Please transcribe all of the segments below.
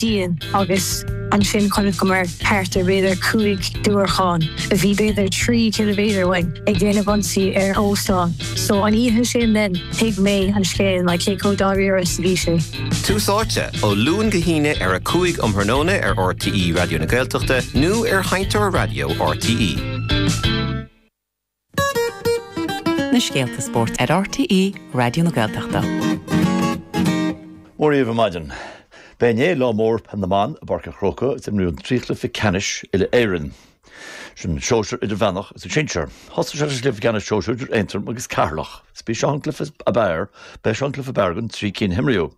dian agus ansin chonac go mor thart ar b'fhéidir cúig diúracháin a bhí b'fhéidir trí chiliméadar uainn ag déanamh ionsaí ar óstán so an oíche sin then thuig mé an scéal like cé chomh dáiríre is a bhí sé. Tús Áite, ó Luan go hAoine ar a 5 um thráthnóna ar RTÉ Raidió na Gaeltachta nó ar sheinnteoir raidió RTÉ. na scéalta spóirt ar RTÉ Raidió na Gaeltachta. Mora dhaoibh ar maidin. Ba é inné Lá Mór Pheil na mBan i bPáirc an Chrócaigh is imríodh an trí chluiche ceannais Uile-Éireann. San sóisear, idirmheánach is an sinsear. Thosaigh sé sa gcluiche ceannais sóisear idir Aontroim agus Ceatharlach. Is b'é seo an cluiche ab fhearr, b'é seo an cluiche ab fhearr den trí cinn a himríodh.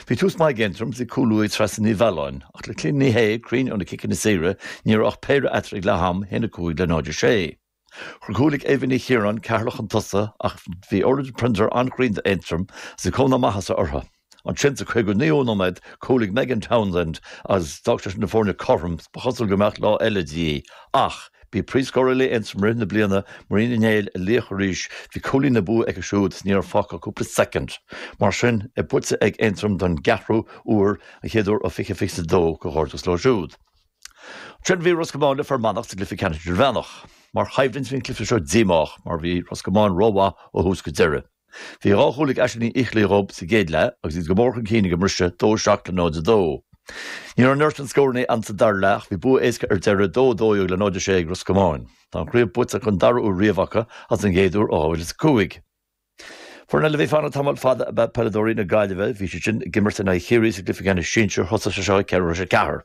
Bhí tús maith ag Aontroim, bhí cúl uaidh Treasa Ní Mhealláin, ach le Clíona Ní Shé cruinn ó na ciceanna saoire, ní raibh ach péire eatarthu ag leath-am, 1 5 le 0 6. Chuir cúl ag Aoibhinn Ní Chiaráin Ceatharlach chun tosaigh ach bhí Orlaith Prenter an-chruinn d'Aontroim agus bhí cuma na maitheasa orthu. Ansin, sa 59ú nóiméad, cúl ag Megan Townsend agus d'fhág sé sin na foirne cothrom, ba chosúil go mbeadh lá eile de dhíth, ach, Bhí príomhscórálaí Aontroim i rith na bliana, Maria Ní Néill, ina laoch arís. Bhí cúilín na bua aici siúd is ní raibh fágtha ach cúpla soicind. Mar sin, é buaite ag Aontroim don gceathrú uair, an chéad uair ó 2022 gur éirigh leo siúd. Ansin bhí Ros Comáin le Fear Manach sa gcluiche ceannais idirmheánach. Mar choimhlint bhí an cluiche seo díomách mar bhí Ros Comáin rómhaith ó thús go deireadh. Bhí dhá chúl ag Aisling Ní Fhicheallaigh dhób sa gcéad leath agus iad go mór chun cinn ag an mbriseadh, 2 7 le 0 2. Ní raibh an oiread scórannaí ann sa dara leath ach bhí bua éasca ar deireadh, 2 12 le 0 6 ag Ros Comáin. Tá an chraobh buaite don dara huair riamh acu agus an gcéad uair ó 2005. Foireann eile a bhí ag fanacht tamall fada ab ea peileadóirí na Gaillimhe. Bhí siad sin ag imirt in aghaidh Chiarraí sa gcluiche ceannais sinsir. Thosaigh sé seo ag ceathrú tar éis a ceathair.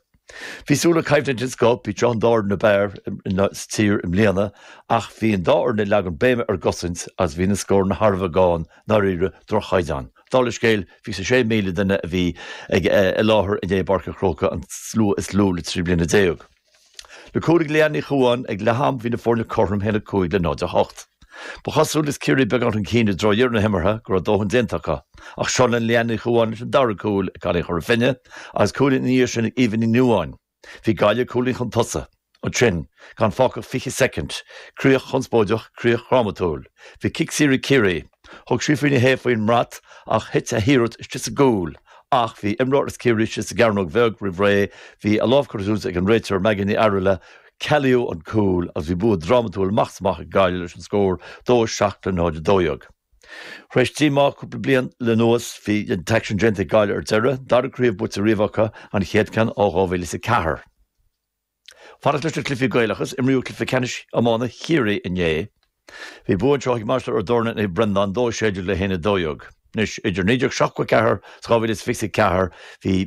Bhí súil le coimhlint den scoth idir an dá fhoireann ab fhearr sa tír i mbliana ach bhí an dá fhoireann ag leagan béime ar an gcosaint agus bhí na scóranna thar a bheith gann, ndáiríre, droch-chaighdeán. Dála an scéil, 26,000 duine a bhí ag i láthair inné i bPáirc an Chrócaigh an slua is lú le trí bliana déag. Le cúl ag Leanne Ní Chomháin ag leath-am bhí na foirne cothrom 1-5 le 0-8. Ba chosúil is Ciarraí beagán chun cinn i dtreo dheireadh na himeartha go raibh a ndóthain déanta acu, ach seo linn Leanne Ní Chomháin leis an dara cúl ag cailín Chora Finne agus cúilín ina dhiaidh sin ag Éabha Ní Nuadháin. Bhí Gaillimh cúilín chun tosaigh. Ansin, gan fágtha ach 20 soicind, críoch chonspóideach, críoch dhrámatúil. Bhí cic saor ag Ciarraí. Thug Síofra Ní Shé faoin mbeart ach thit a hiarracht istigh sa gcúl. Ach bhí imreoir as Ciarraí istigh sa gcearnóg bheag roimh ré. Bhí a lámh curtha suas ag an réiteoir Maggie Ní Fhearghaile. Cealaíodh an cúl agus bhí bua drámatúil amach is amach ag Gaillimh leis an scór 2 7 le 0 12. Tar éis díomá cúpla bliain anuas, bhí an t-aicsean déanta ag Gaillimh ar deireadh, dara craobh buaite riamh acu, an chéad ceann ó 2004. Fanacht leis na cluichí Gaelacha is imríodh cluiche ceannais iomána Chiarraí inné. Bhí bua anseo ag Mainistir Ó dTorna ar Naomh Breandán, 2 16 le 1 12. Anois, idir 1974 is 2024, bhí.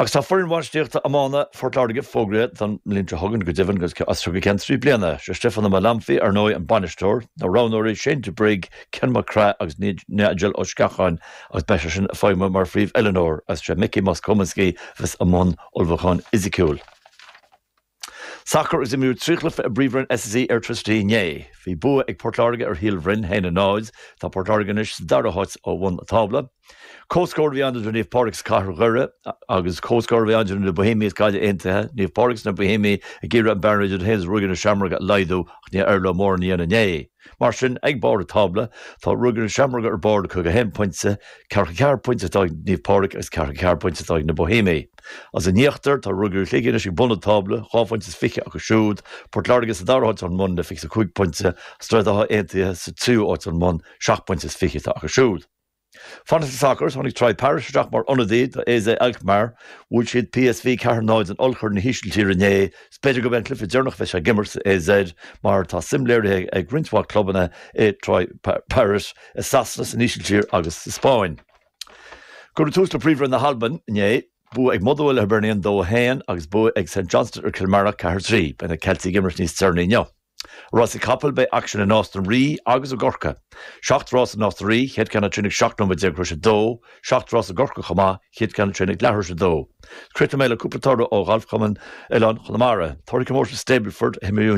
Agus tá foireann bhainistíochta iomána Phort Láirge fógraithe don mbliain seo chugainn, go deimhin, agus as seo go ceann trí bliana. Sé Stiofán Ó Maolanfaidh, ar ndóigh, an bainisteoir, na roghnóirí, Shane de Brigg, Ken Mac Craith agus Nigel Ó Sceacháin, agus beidh seisean ag feidhmiú mar phríomhoiliúnóir, agus sé Mickey Moss-Cominsky a bheas i mbun ullmhúcháin fhisiciúil. Sacar agus imríodh trí chluiche i bPríomhroinn SSE Airtricity inné. Bhí bua ag Port Láirge ar Shíol Bhroin, 1-0. Tá Port Láirge anois sa dara háit ó bhun an tábla. Comhscór a bhí ann idir Naomh Pádraig agus Cathair Dhoire agus comhscór a bhí ann idir na Boihéimigh agus Gaillimh Aontaithe. Naomh Pádraig agus na Boihéimigh ag iarraidh an bearna idir iad féin is Ruagairí na Seamróige a laghdú ach níor éirigh leo mórán a dhéanamh inné. Mar sin, ag barr an tábla, tá Ruagairí na Seamróige ar barr le 51 pointe, ceathracha ceathair pointe atá ag Naomh Pádraig agus ceathracha ceathair pointe atá ag na Boihéimigh. Is in íochtar, tá Ruagairí Shligigh anois ag bun an tábla, dhá phointe is fiche acu siúd, Port Láirge sa dara háit ón mbun le fiche is cúig pointe, Droichead Átha Aontaithe sa tríú háit ón mbun, seacht bpointe is fiche atá acu siúd. Fanacht leis an sacar, tháinig Troy Parrott isteach mar ionadaí do AZ Alkmaar. Bhuail siad PSV 4 0 in ollchorn na hÍsiltíre inné. Is b'fhéidir gurb é an cluiche deireanach a bheidh sé ag imirt sa AZ mar tá suim léirithe ag roinnt mhaith clubanna i Troy Parrott i Sasana, san Ísiltír agus sa Spáinn. Cuireadh tús le Príomhroinn na hAlban inné. Bua ag Motherwell ar Hibernian 2 1 agus bua ag St Johnstone ar Kilmarnock 4 3. Beidh na Ceiltigh ag imirt níos deireanaí inniu. Rásaí capall, beidh aicsean i Nás na Rí agus i gCorcaigh. Seacht rás i Nás na Rí, chéad ceann a trio'n ag 17 nóiméad tar éis a dó. Seacht rás i gCorcaigh chomh maith, chéad ceann a trio'n ag leathuair tar éis a dó. Críochnóidh mé le cúpla toradh ó Ghalfchumann Oileáin Chonamara. Toradh comórtas Stableford a himríodh inné.